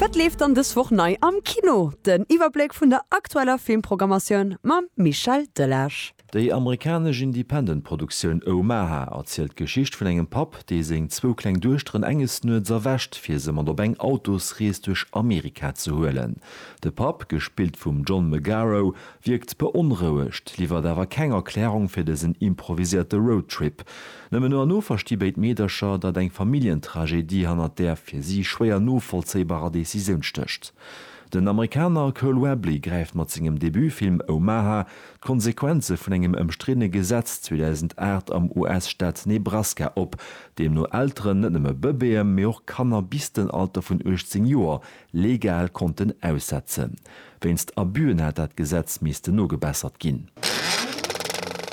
Wat leeft dann dës Woch nei am Kino? Den Iwwerbléck vun der aktueller Filmprogrammatioun mam Michel Delage. Déi amerikanesch Independent-Produktioun Omaha erzielt d'Geschicht vun engem Papp, dee seng zwou kleng Duechteren enges Nuets erwächt, fir se mat op eng Autosrees duerch Amerika ze huelen. De Papp, gespillt vum John Magaro, wierkt beonrouegt, liwwert awer keng Erklärung fir dësen improviséierte Roadtrip. Nëmmen no an no versti béid Meedercher, datt eng Familljentragedie hannert där fir si schwéier novollzéibarer Decisioun stécht. Den Amerikaner Cole Webley gräift mat sengem Debutfilm Omaha d'Konsequenze vun engem ëmstriddene Gesetz 2008 am US-Staat Nebraska op, deemno Elteren net nëmme Bëbeeë mee och Kanner bis den Alter vun 18 Joer legal konnten aussetzen. Wéinst Abüen hätt dat Gesetz missten nogebessert ginn.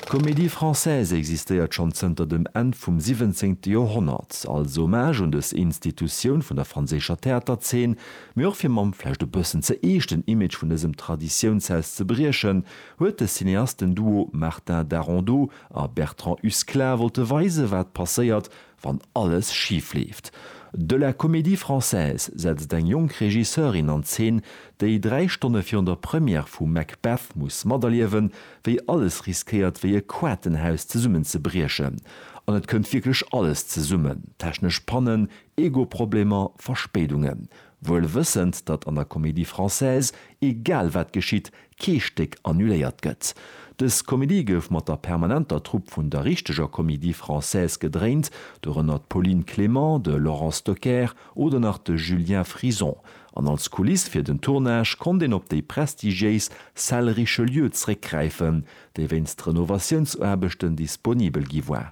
D'Comédie Française existéiert schonn zënter dem Enn vum siwwenzéngte Joerhonnert, als Hommage un dës Institutioun vun der franséischer Theaterzeen, mee och fir mam vläicht e bëssen ze eeschten Image vun dësem Traditiounshaus ze briechen, huet de Cineastenduo Martin Darondeau a Bertrand Husklah wollte weisen, wat passéiert, wann alles schif leeft. De La Comédie Française setzt eng jonk Regisseurin an Zeen, déi dräi Stonne virun der Première vu Macbeth muss materliewen, wéi alles riskéiert wéi e Quatenhaus zesummenzebriechen. An et kënnt wierklech alles zesummen, technesch Pannen, Ego-Problemer, Verspéidungen. Wuel wëssend, datt an der Comédie Française egal wat geschitt, kee Stéck annuléiert gëtt. Dës Komedie gouf mat der permanenter Trupp vun der richteger Comédie Française gedréint, dorënner d'Pauline Clément, de Laurent Stocker oder nach de Julien Frison, an als Kuliss fir den Tournage konnt een op déi prestigiéis Salle Richelieu zréckgräifen, déi wéinst Renovatiounsaarbechten disponibel gi war.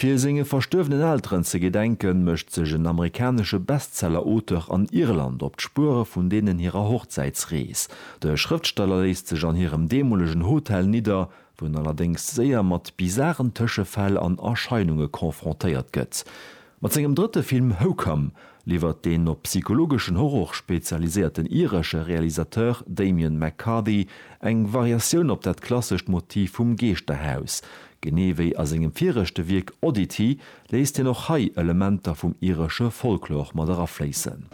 Fir senge verstuerwenen Elteren ze gedenken, mécht sech en amerikanesche Bestseller-Auteur an Irland op d'Spuere vun deenen hirer Hochzäitsrees. De Schrëftsteller léisst sech an hirem deemolegen Hotel nidder, wou en allerdéngs séier mat bizaren Tëschefäll an Erscheinunge confrontéiert gëtt. Mat sengem drëtte Film Hocome liwwert den op psychologeschen Horror spezialiséierten iresche Realisateur Damian McCarthy eng Variatioun op dat klassescht Motiv vum Geeschterhaus. Genee wéi a sengem viregte Wierk Oddity léisst hien och hei Elementer vum iresche Folklor mat erafléissen.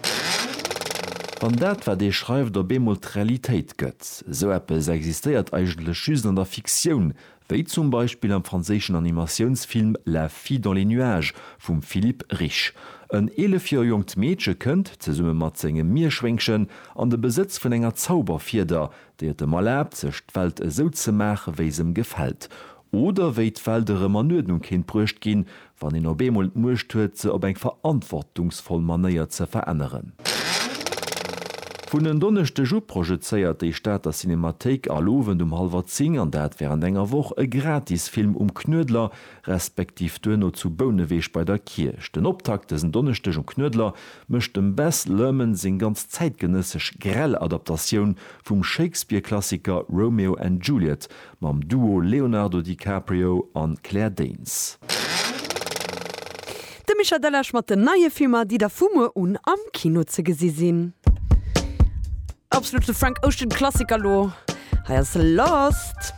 Wann dat, wat ee schreift, op eemol d'Realitéit gëtt, esou eppes existéiert eigentlech just an der Fiktioun, Wéi zum Beispill am franséischen Animatiounsfilm La fille dans les nuages vum Philippe Rich. En 11 Joer jonkt Meedche kënnt, zesumme mat sengem Mierschwéngchen, an de Besëtz vun enger Zauberfieder, déi et em erlaabt, sech d'Welt esou ze maache wéi s'em gefält. Oder wéi d'Welt erëm an Uerdnung kéint bruecht ginn, Wann een op eemol d'Muecht huet, se op eng verantwortungsvoll Manéier ze veränneren. Vun en Donneschdeg u projezéiert déi Stater Cinemathéik all Owend um hallwer 10, an dat wärend enger Woch, e Gratisfilm um Knuedler, respektiv duerno zu Bouneweg bei der Kierch. Den Optakt dësen Donneschdeg um Knuedler mécht dem Baz Luhrmann seng ganz zäitgenëssesch grell Adaptatioun vum Shakespeare-Klassiker Romeo and Juliet Mam Duo Leonardo DiCaprio an Claire Danes. De Mischa Delesch mat den neie Filmer, déi da vu muer un am Kino ze gesi sinn. Absolute Frank Ocean Klassiker lo, hei ass Lost.